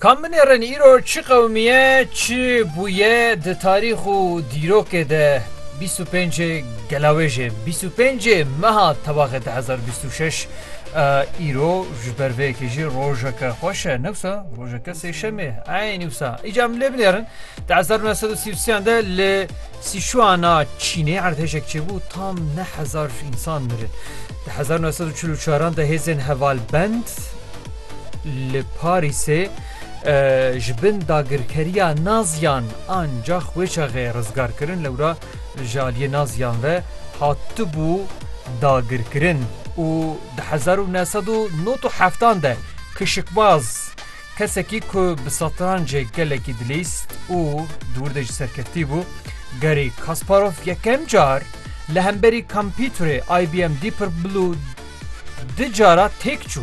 Ka min ê rên îro çi qewimiye çi bûye di tarîx û dîrokê de bîst û pênc gelawêjê bîst û pênc meha tevaxê du hezar û bîst û şeş îro ji ber vê yekê jî rojeke xweş e newsa rojeke sêşemê eynî wisa îca min lê binêrin di hezar nû sed û sî û sê de li Sichuan a Çînê erdhejek çêbû tam neh hezar însan mirin. Di hezar û neh sed û çil û çaran de hêzên hevalbend li Parîsê ji bin dagirkeriya Naziyan an cax wê çaxê rizgar kirin lewra ji aliyê Naziyan ve hatibû dagirkirin û di hezar û neh sed û nod û heftan de kişikbaz Kesekî ku bi setrancê gelekî dilîs û di wir de jî serkeftî bû, Garry Kasparov yekem car li hemberî kompîterê IBM Deeper Blue du cara têk çû.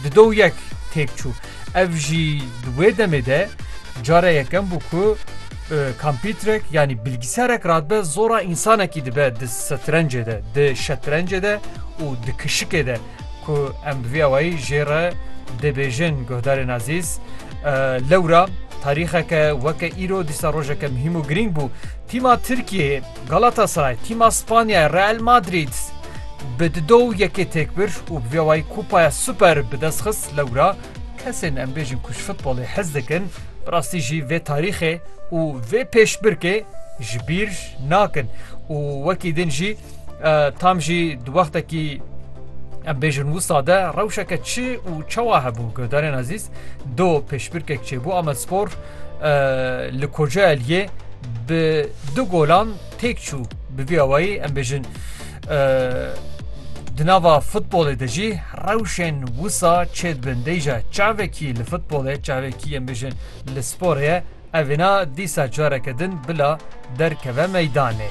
Di do û yek têk çû. Ev jî di wê demê de cara yekem bû ku kompîterek yanî bilgisarek radibe zora însanekî dibe di setrencê de, di şetrencê de û di kişikê de. Ku em bi vî awayî jê re dibêjin guhdarên ezîz, lewra tarîxeke weke îro dîsa rojeke muhîm û girîng bû. Tîma Tirkiyeyê Galatasaray tîma Spanyayê Real Madrîd bi di do û yekê têk bir û bi vî awayî Kupaya Super bi dest xist. Lewra kesên em bêjin ku ji futbolê hez dikin bi rastî jî vê tarîxê û vê pêşbirkê ji bîr nakin û wekî din jî, Tam jî di wextekî em bêjin wisa de rewşeke çi û çawa hebû guhdarên ezîz do pêşbirkek çêbû Amedspor li Kocaeliyê bi du golan têk çû bi vî awayî em bêjin di nava futbolê de jî rewşên wisa çê dibin deyja çavekî li futbolê çavekî em bêjin li sporê ye evêna dîsa careke din bila derkeve meydanê.